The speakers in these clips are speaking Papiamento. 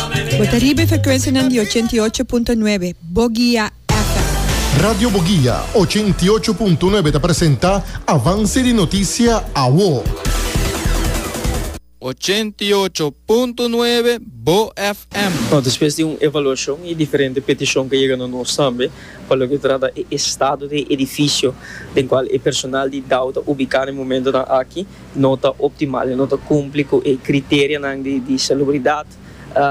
Bo ta riba e frekwensianan di ochenta i ocho punto nuebe Bogia FM. Radio Bogia ochenta i ocho punto nuebe ta presenta Avance di Noticia Awo. Ochenta i ocho punto nuebe Bo FM. No, despues di un evaluashon y diferente petishon ke yega no nos tambe pa loke trata e estado di e edifisio den kual e personal di Dow ta ubiká den momentonan aki, no ta optimal i no ta kumpli ku e kriterianan di salubridat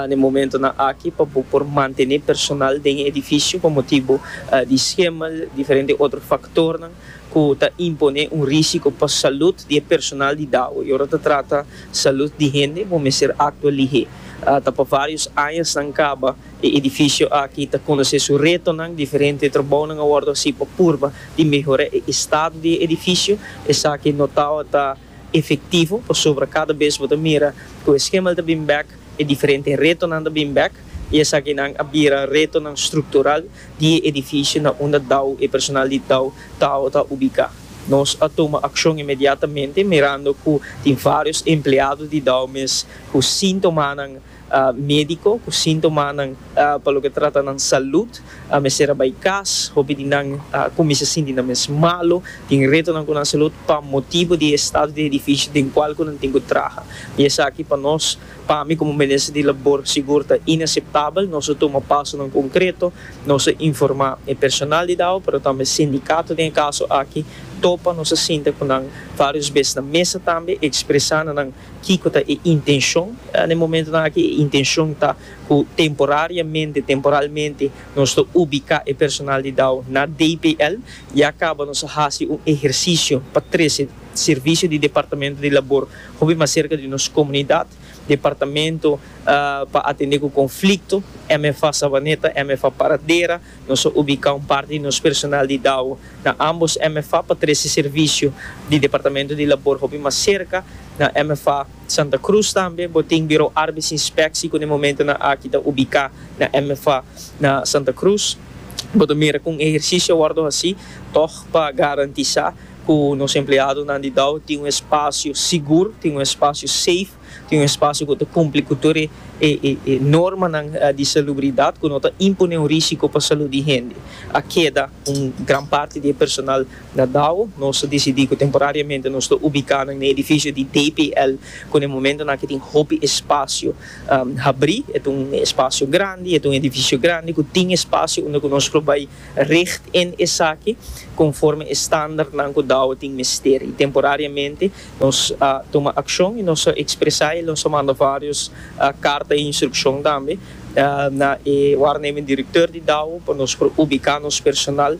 den momentunan aki pa bo por mantené personal den e edifisio pa motibu di skemel diferente otro faktornan ku ta imponé un risiko pa salut di e personal di Dago i ora ta trata salut di hende bo mester aktua lihé ta pa vários añasnan kaba E edifisio aki ta konosé su retonan diferente. E trabounan a wòrdu hasí pa purba di mehorá e estado di e edifisio. Esaki no ta ora ta efektivo pasobra kada bes bo ta mira ku e skemal ta bin bèk, e diferente retonan ta bin bèk i esakinan a bira retonan struktural di e edifisio na unda Dau, e personal di Dau ta ora ta ubiká. Nos a tuma akshon inmediatamente mirando ku tin vários empleado di Dau mes ku síntomanan. Médiko ku síntomanan pa loke trata nan salùt a mester a bai kas. Hopi di nan kuminsá sinti nan mes malu, tin retonan ku nan salùt pa motibu di e stado di edifisio den kual ku nan tin ku traha. I esaki pa nos, pa mi komo Minister di Labor sigur ta inaseptabel. Nos a tuma pasonan konkreto, nos a informá e personal di Dao pero tambe e sindikato den e kaso aki. Topa nos a sinta ku nan vários bes na mesa tambe, ekspresá na nan. Kico ta e intencion? Na e momentonan aki e intencion ta cu temporariamente, temporalmente, nos ta ubica e personal di Dao na DPL. Ya caba nos a haci un ehercicio pa trece servicio di Departamento di Labor hopi mas cerca di nos comunidad, Departamento pa atende cu conflicto, MFA Savaneta, MFA Paradera, Nos a ubicá un parti di nos personal di Dao na ambos MFA pa trece servicio di Departamento di Labor hopi mas cerca. Na MFA Santa Cruz tambe bo tin Bureau Arbeidsinspectie cu na e momento nan aki ta ubicá na MFA na Santa Cruz. Bo ta mira cu un ehercicio a wordo hací tog pa garantisá cu nos empleadonan di Dao tin un espacio sigur, tin un espacio safe. tin un espasio ku ta kumpli ku tur e e normanan di salubridat ku no ta impon'é un risiko pa salud di hende. A keda un gran parti di e personal na Dao. Nos a disidí ku temporariamente nos ta ubiká nan na edifisio di DPL ku na e momentonan aki tin hopi espasio habrí. E ta un espasio grandi, e ta un edifisio grandi ku tin espasio unda ku nos por bai richt en esaki konforme e standarnan ku Dao tin mester. I temporariamente. Nos a tuma akshon i nos a ekspresá el. Nos a manda vários karta di instrukshon tambe na e wárnemen direktè di Dao pa nos por ubiká nos personal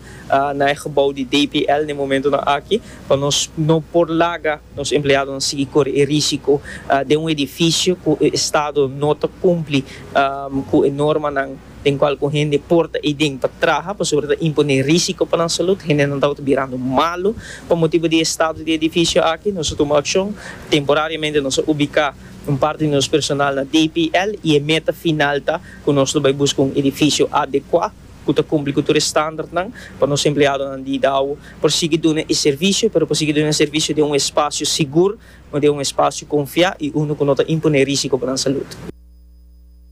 na e gebou di DPL den e momentunan aki pa nos no por laga nos empleadonan sigui kore e rísiko den un edifisio ku e estado no ta kumpli ku e normanan. den cual cu hende por ta iden pa traha pasobra ta imponé risico pa nan salud. Hendenan tabata birando malu pa motibu di e estado di e edificio aki. Nos a tuma accion. Temporariamente nos a ubica un parti di nos personal na DPL y e meta final ta cu nos lo bay busca un edificio adecua cu ta cumpli cu tur e standardnan pa nos empleadonan di Idao por sigui duna e servicio pero por sigui duna e servicio den un espacio sigur, den un espacio confia y unu cu no ta imponé risico pa nan salud.